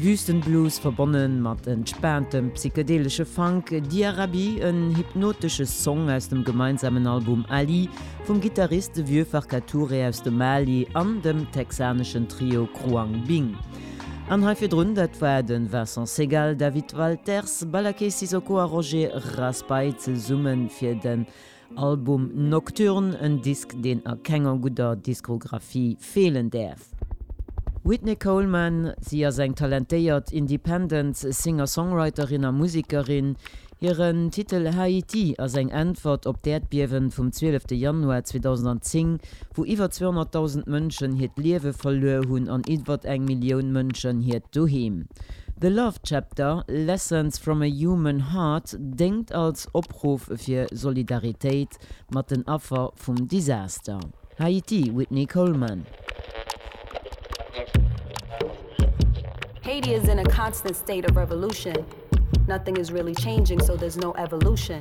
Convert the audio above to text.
Wüstenblues verbonne mat entspaantem psychedelesche Funk, Diarabi, en hypnotesche Song aus dem gemeinsamen Album Ali vum Gittarist Vieux Farka Touré aus dem Mali an dem texaneschen Trio Khruangbin. An hei virdrun, dat war de Vincent Segal, David Walters, Ballaké Sissoko a Roger Raspail zesumme fir de Album Nocturne, en Disk deen a kenger gudder Diskografie feelen däerf. Whitney Coleman, Si ass eng talentéiert Independent Singer-Songwriterin a Musekerin. Hiren Titel Haiti ass eng Äntwert op d'Äerdbiewen vum 12 Januar 2010. wou iwwer 200.000 Mënschen hiert Liewe verluer hunn an iwwert eng Millioun Mënschen hiert Doheem. The Love Chapter, Lessons from a Human Heart déngt als Opruff fir Solidaritéit mat den Affer vum Disaster Haiti, Whitney Coleman. Haiti is in a constant state of revolution, nothing is really changing so there's no evolution.